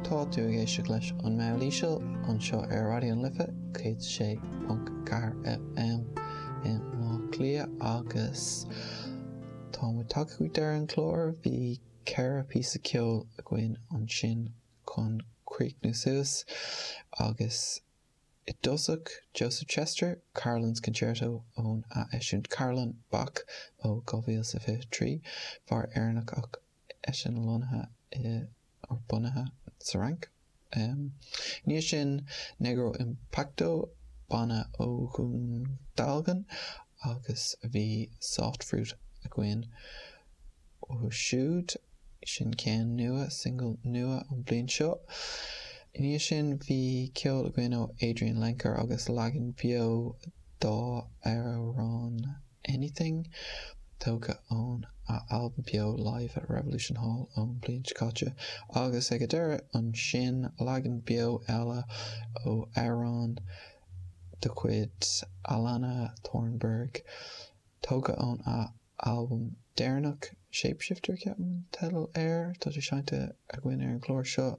Tá tú ag éisteacht leis An Meall Íseal anseo ar Raidió na Life 106.4 FM i mBleá Cliath agus tá muid tagtha go deireadh an chláir. Bhí ceithre píosa ceoil againn ansin chun críochnú suas agus i dtosach Joseph Chester, Carolan's Concerto óna eisiúint Carolan, Bach ó 2023, fear Éireannach ach eisean lonnaithe i, or bunaithe sa Fhrainc. I ndiaidh sin, Negro Impacto, banna ó Dhún Dealgan, agus bhí Soft Fruit againn uathu siúd. Sin ceann nua, single nua an bhliain seo. I ndiaidh sin, bhí ceol againn ó Adrianne Lenker agus leagan beo dá amhrán. Anything, tógtha óna albam beo Live at Revolution Hall ón bhliain seo caite, agus ag an deireadh ansin leagan beo eile ó amhrán de chuid Alannah Thornburgh, tógtha óna albam deireanach Shapeshifter, ceapaim an teideal air, tá sé seinnte againn ar an gclár seo.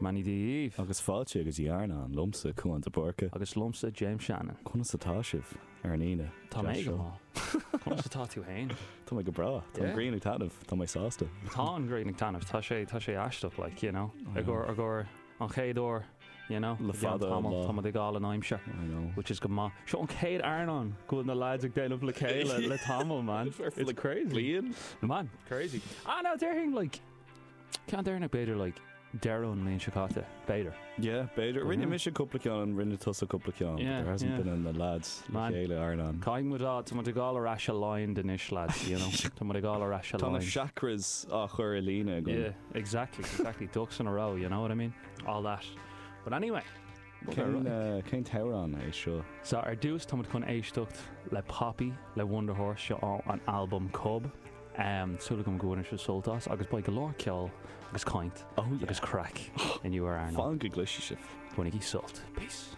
Dia daoibh! Agus fáilte go dtí Iarnóin, liomsa Cuán de Búrca. Agus liomsa James Shannon. Conas atá sibh, ar an Aoine? Tá mé go maith. Conas atá tú fhéin? Tá mé go breá. Tá an ghrian ag taitneamh. Tá mé sásta. Tá an ghrian ag taitneamh. Tá sé, tá sé aisteach, like, you know, i gcomhar, i gcomhar an chéad uair, you know, Le fada an lá. Tá muid ag fáil an aimsir, I know. which is go maith. Seo an chéad Iarnóin go bhfuil na lads ag déanamh le chéile le tamall, man. It's crazy. Bliain? Man, crazy. Ah, no, déarfainn, like. Ceann deireanach b'fhéidir, like, deireadh an bhliain seo caite, b'fhéidir. Yeah, b'fhéidir. Rinne mise cúpla ceann and rinne tusa cúpla ceann, but there hasn't been an lads le chéile ar Iarnóin. Caithfidh muid a, tá muid ag gabháil ar ais aligned anois, lads, you know, tá muid ag gabháil ar ais aligned. Tá na chakras á chur i líne againn. Yeah, exactly, exactly, ducks in a row, you know what I mean, all that. But anyway. Cén t-amhrán é seo? So, ar dtús tá muid chun éisteacht le Poppy le Wunderhorse, seo ón albam Cub, súil agam go mbainfidh sibh sult as agus beidh go leor ceol agus caint agus craic inniu ar Iarnóin. Fan go gcloise sibh. Bainigí sult. Peace.